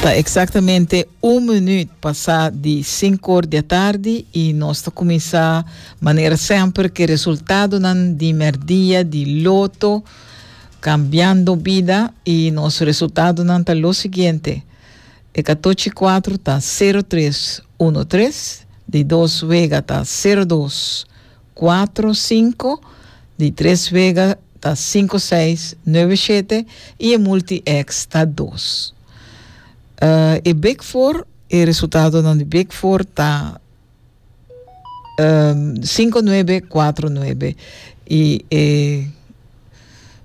Ta exactamente un minuut pasa di cinco or dia tardi y nos ta cuminsa manera semper ke resultadonan di merdia di loto cambiando bida y nos resultadonan ta lo siguiente. De catochi cuatro ta cero tres uno tres, di dos wega ta cero dos Cuatro, cinco, di tres wega ta cinco seis, nuebe shete y e multi X ta dos. Uh, e big four, e resultadonan di big four ta um, cinco nuebe, cuatro nuebe y e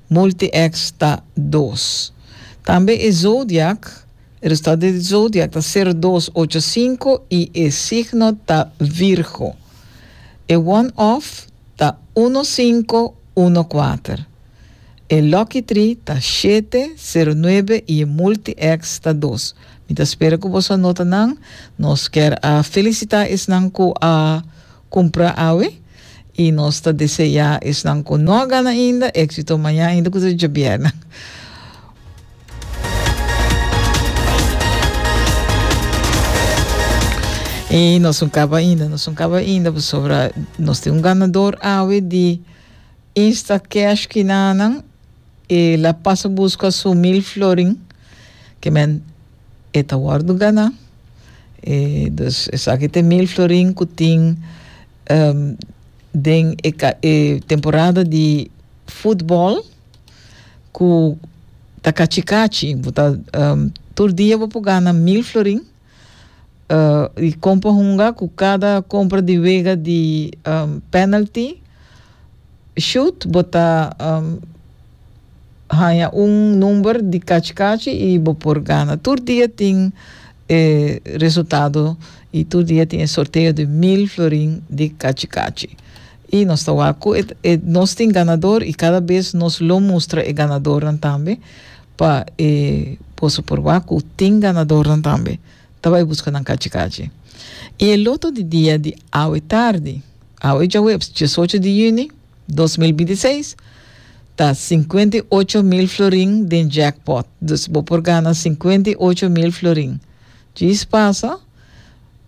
multi X ta dos. Tambe e zodiac. E restat di zodiak ta sero, dos, ocho, sinku i e signo ta Virgo. E one off ta uno, sinku, uno, kuater. E lucky tri ta shete, sero, nuebe i e multi ex ta dos. Mi ta spera ku boso a nota nan. Nos kier a felisita esnan ku a. cumpra awe y nos ta desea esnan cu no a gana ainda exito maña ainda cu ta Diabierna. Y nos no caba ainda, nos no caba ainda pasobra nos tin un ganador awe di Insta Cash Kinanan y la pasa busca su mil florin que men E ta wòrdu ganá. E dus esaki ta e mil florin ku tin den e e temporada di futbòl ku ta kachi kachi. Bo ta tur dia bo por gana mil florin di kon pa hunga ku kada kompra di wega di pènalti shut bo ta. Haña un number di kachi kachi y bo por gana. Tur dia tin e resultado y tur dia tin e sorteo di mil florin di kachi kachi. Y nos ta wak cu e nos tin ganador y cada bes nos lo mustra e ganadornan tambe pa e boso por wak cu tin ganadornan tambe ta bay busca nan kachi kachi. Y e loto di dia di awe tardi, awe djaweps diesocho di juni, Dos mil binti seis ta sinkuenta i ocho mil florin den jackpot, dus bo por gana sinkuenta i ocho mil florin. Djis pasa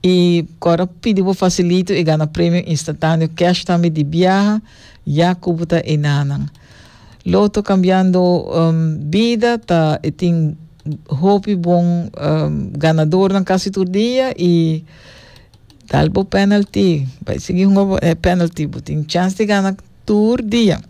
i kòrda pidi bo fasilito i gana premio instantaneo cash tambe di biaha ya ku bo ta enanan. Loto Cambiando um, Bida ta e tin hopi bon um, ganadornan kasi tur dia i Dal bo penalty. Bai sigui hunga bo e penalty. Bo tin chance di gana tur dia.